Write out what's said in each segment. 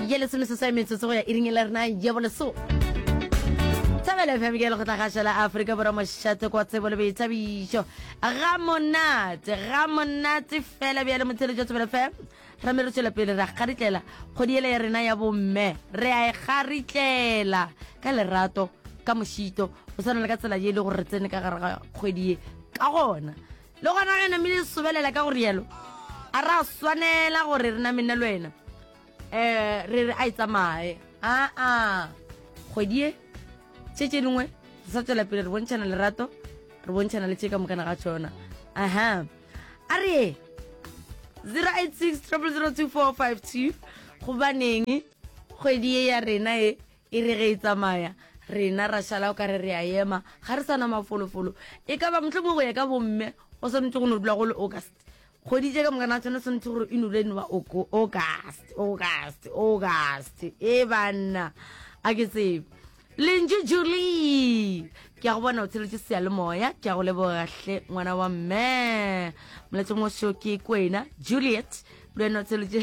ye lesome se sa metsotso go ya iring e le rena ye boleso thabelo fm ke lekgotla gaša la aforika borwa mošate kwa tsebo le boithabišo ga monate ga monate fela bjale motheletši wa thabelo fm ra me re tšwela pele ra garitlela kgodi ele ya rena ya bomme re a e garitlela ka lerato ka mošito go tshwana le ka tsela ye e le gore re tsene ka gare ga kgwedi ye ka gona Le gona ge namile e sobelela ka go rialo, a ra swanela gore re name nna le wena um re re a e tsamaye aa kgwedi e tše tše dingwe re sa tswela pele re bontšhana lerato re bontšhana le tše ka mokana ga tšona aha a re ye 086 002452 gobaneng kgwedi e ya rena e E re ge e tsamaya, rena ra šala o ka re re a ema, ga re sa na mafolofolo. E ka ba mohlomongwe go ya ka bomme go swanetše go no dula go le August. Kgwedi tše ka moka na tshwane swanetše gore e nole eno ba August, August, August. E banna, a ke tsebe. Lentšu Julie, ke a go bona o tsheletše seyalemoya, ke a go leboga hle ngwana wa mme. Moletšong o seo ke kwena, Juliet, le wena o tsheletše.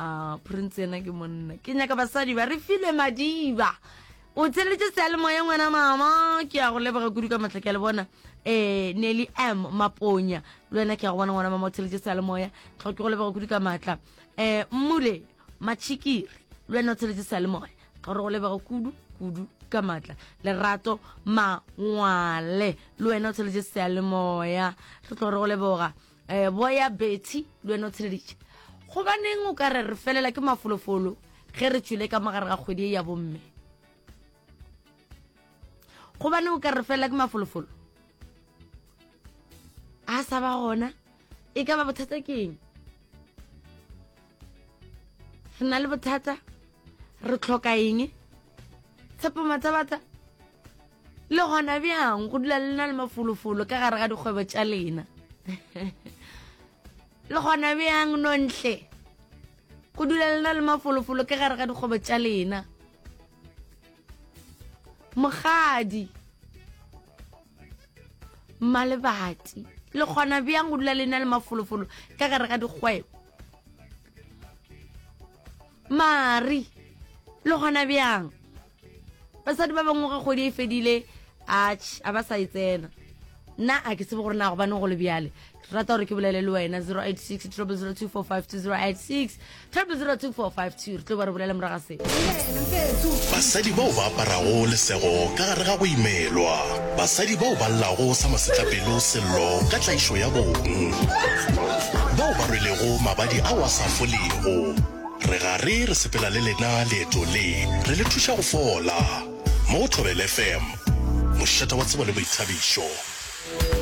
Ah, prince yena ke monna ke nyaka basadi ba re file madiba o tsheletse sealemoya ngwana mama ke ya go lebega kudu ka matlha ke le bona um nelly m maponya le wena ke ya go bona ngwana mama o tsheletse sealemoya tlho ke go lebega kudu ka maatla um eh, mmule machikiri le wena o tsheletse sealemoya tlho re go lebega kudu kudu ka maatla lerato mangwale le wena o tsheletse sealemoya re tlo re go leboga eh, boya bethy le wena o tsheleditše gobaneng o ka re re felela ke mafolofolo ge re tšwile ka mogare ga kgwedi e ya bomme gobaneng o ka re felela ke mafolofolo a sa ba gona e ka ba bothata keng re na le bothata re tlhoka eng tshepo matsabatsa le gona bjang go dula le na le mafolofolo ka gare ga dikgwebo tša lena le gona bjang nontle go dula le na le mafolofolo ka gare ga dikgwebo tša lena mogadi mmalebati le kgona bjang go dula le na le mafolofolo ka gare ga dikgwebo Mari, le gona bjang? Basadi ba bangwe ge kgwedi e fedile, atšh, a ba sa e tsena. Nna a ke tsebe gore na gobaneng go le bjale. Ke rata gore ke bolele le wena 086 00245 086 00245 re tlo ba re bolele moraga se. Basadi bao ba aparago lesego ka gare ga go imelwa. Basadi bao ba llago sa masetlapelo sello ka tlaišo ya bong. Bao ba rwelego mabadi ao a sa folego. Re gare re sepela le lena leeto le, re le thuša go fola. Mo go Thobela FM, mošeta wa tsebo le boithabišo.